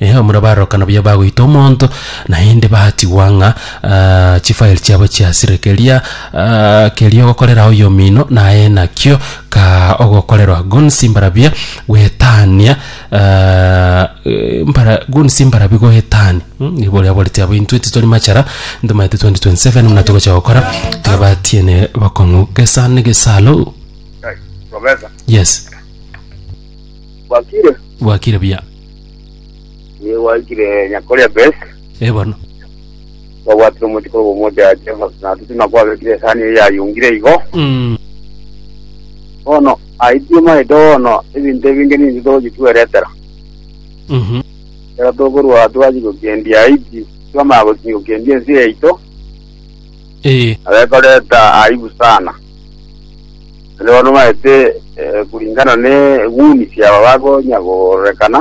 Ee, omura barokano baye bagoita omonto, naende batigwa ng'a ah, chifaeli chiabo chiasire. Keria ah, keria ogokorera oyomino naye nakio ka ogokorerwa gonsi mbarabia gwetania ah, eh, mbara gonsi mbarabia goetania Mm, nigo boria boreti abo intwe titori machara ntomaete 2027 muna togocha gokora tiga batiene bokong'u gesa ne gesalo Profesa, yes wakire bwakire buya Nigo gwaikire nyakoria best Eh, bono. kwabwatire omochi korwa omocha ya Jehova na tutima kwabekire esani eye yayungire igo Mm. bono aitie maete bono ebinto ebinge ninche togochi tweretera Mhm. ekero tokorwa twachi gokendia aiti twamaya gochi gokendia ense yaito Eh. abekoreta aibu sana Naende bono baete kuringana n'eng'uni chiabo bakonya korekana,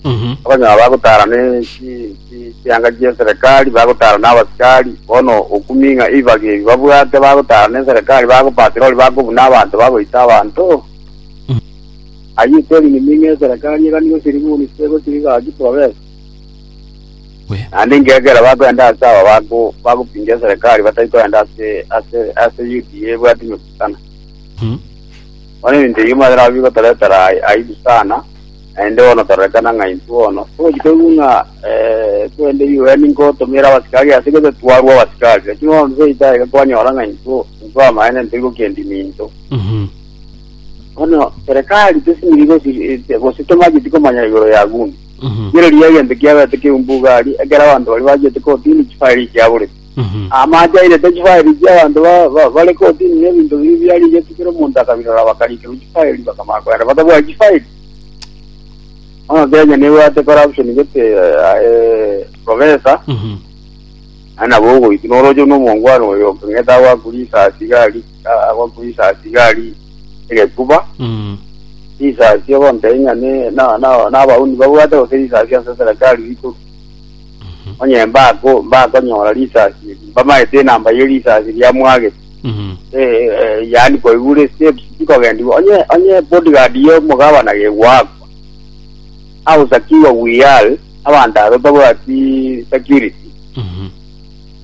Mhm. bakonyora bagotara ne chi- chi- chianga chi'eserekari, bagotara n'abasikari. Bono okumi ng'a ebibaga ebi babwate bagotara n'eserekari bagopatira ori bakobuna abanto bagoita abanto. Ayio tori nimi ng'a eserekari eganigwe chiriguni chie gochiriga gaki porobesi. Naende inki ekiagera bakoenda ase aba bago- bagopindia eserekari batari koenda ase ase ase Yudea ebwati emegusana? Bono ebinto ebio monyora nabwo bigotoretera ai- aibu sana, naende bono tororekana ng'a intwe bono togochi toigwe ng'a eh, twende UN nkotomere abasikari ase gose twarwa abasikari. Lakini bono toseete aye iga kwanyora ng'a intwe intwe amaene ntoigwe kende minto. Bono serekari tesimiri gosi gose tomanyeti komanya igoro ya gun. Mhm. Rirorio egento kiabete keumbu igari, ekero abanto baria bachete kotini chifairi chia bure. Mhm. Amache airete chifairi chia abanto ba- ba- bare kotini na ebinto biria biarigetwe kera omonto akabirora bakarikerwa chifairi bakamanya kogenda batabwati chifairi. Bono Kenya nebwate corruption gete aye profesa Mhm. naende nabo ogoitwa noroche buna omongwana oyo okong'ete agwakure risasi iga arikwe. agwa kwisasi gari egekuba Mm. risasi ogontebi ng'a ne- na- na- nabauni babwate gose risasi ase serikali riko onye mbako mbakonyora risasi eri mbamaete enamba ye risasi riamwagete Mm. Eh, eh, yaani koigure steps tikogendigwa onye onye bodyguard yo mugabana gegwakwa ausakiwa wiyal abanto aba batabwati security Mm.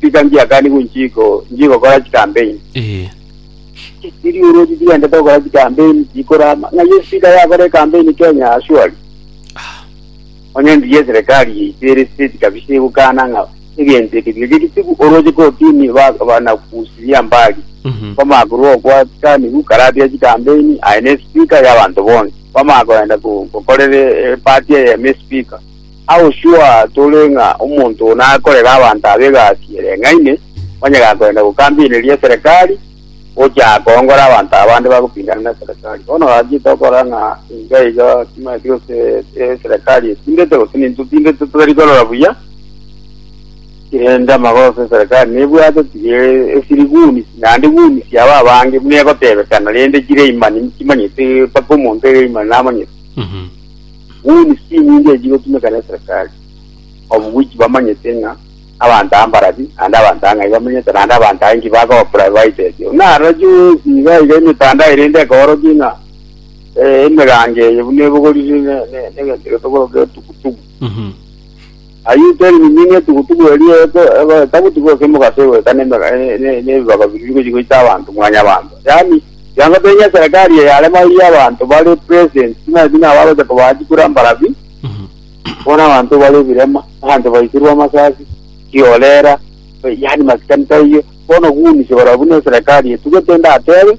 Tiga ngiakanigwe inche igo, nchigokora chikampeni. Ee. Chisiria oroche chigendete gokora chikampeni, chikorama. Ng'ai espika yakora ekampeni Kenya? Surely. Onye entugi y'eserikari yaito ere state kabisa egokana ng'a egento eke tiga gegitigwe, oroche kotini ba- banakusiria mbari. Mhm. Kwamanya korwa okwa chikanigwe karatiga chikampeni, aye na espika y'abanto bonsi. Kwamanya koenda ko- gokorera epati eyemo espika. Agosuaa tore ng'a omonto oo nakorere abanto aba egasi ereng'aine, onye gakorenda gokambieneria eserekari, gocha akoongora abanto aba bande bagopingana neserekari. Bono gaki tokora ng'a inga iga timanyeti gose eserekari etindete gose nintwe totindete totari korora buya, erinde amagoso eserekari nebwate tiga esiri goons naende goons aba abange buna egotebekana rende chire imani timanyeti mpaka omonto ere imani namanyeti. Nguni chinyinge echi gotumeka neserikali, obogochi bamanyete ng'a abanto aa mbarabi, naende abanto aa ng'ai bamenyete, naende abanto aa inki bakoba privaiteti. Buna aroro chionsi iga iga emetandao erende ekoorokia ng'a emegango eye buna ebogoriri ne ne negento getogoro getugutugu. Ayio teri miminge tugutugu erio eko eko etabuti gose emogase goeta ne ne nebibaba biria bigochi goita abanto mwanyabanto. Yaani kianga toinyia eserekari eyarema eyi y'abanto bare present buna buna abagocha kobaa chikura mbarabi, bono abanto bare ebirema, abanto baisirwe amasasi, chiorera, yaani masikani taiyo. Bono gunisio barabwo buna eserekari etugete ndatebe.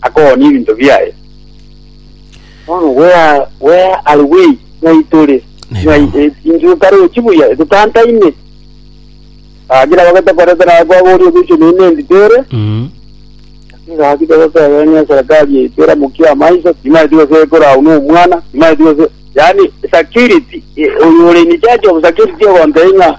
akogonia ebinto biaye. Bono gwea, gwea are bwei, ng'ai tore? Ng'ai Neba. e- intwe totarochi buya, totantaine? Gaki nabo getokorete naye kwaboria ogoichwa neino endi tore, Mm. gaki togotebera ng'a eserekari yaito eramokia amaiso, timaeti gose ekore agwo nomwana, timaeti gose, yaani security, e- oyo ore in charge of security ogontebia ng'a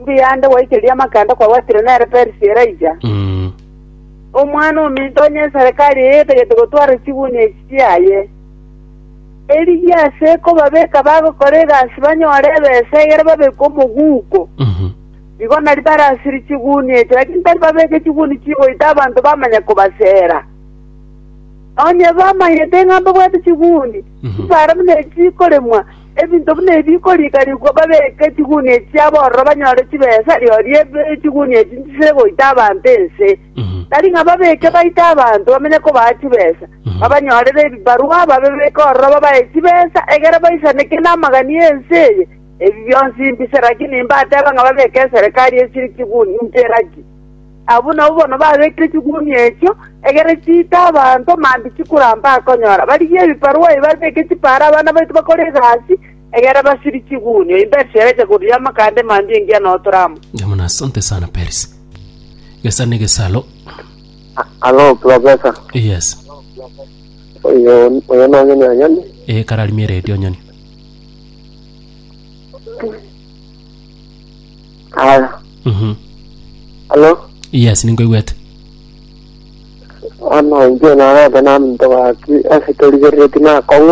Mbuya nde gwaichereria amakanda kwabwatire nere Perisi Elija, Mm. omwana ominto onye eserekari eye etagete gotwara chigunia echi chiaye, erigiya ase kobabeka bagokora egasi banyore ebesa egere babeke omoguko. Mhm. Igo nari barasiri chigunia echi, lakini tari babeke chigunia chigoita abanto bamanya kobasera. Onye bamanyete ng'a mbabwate chigunia, Mhm. mbare buna echi chikoremwa, Ebinto buna ebi bikorikarigwa babeke chigunia echi chiabo ororo banyore chibesa, rirorio ebi chigunia echi nchisire goita abanto ense. Tari ng'a babeke baite abanto bamenye kobaa chibesa, babanyorere ebibarwa, babebeke ororo babae chibesa, egere baisaneke namagani ense eye. Ebi bionsi mbise, rakini mbateba ng'a babeke eserekari esiri chigunia inche raki. Abwo nabwo bono babekire chigumia echio, egere chiite abanto mambia chikoramba konyora. Barigie ebiparwa ebi babeke chipaare abana baito bakore egasi, egere basirie chigumia. Oyo Persi agacha korigia amakanda mambia engiya na otoramo. Jamuna, asante sana Perisi. Gesare negesaro. Alo, profesa. Yes. Oyo oyo nonye ni anyoni. Eh, kararimie radio nyoni. Halo. Mhm. Halo. Yes, ninkoigwete. Bono inche narete naminto gaki ase torigereretie na akong'u.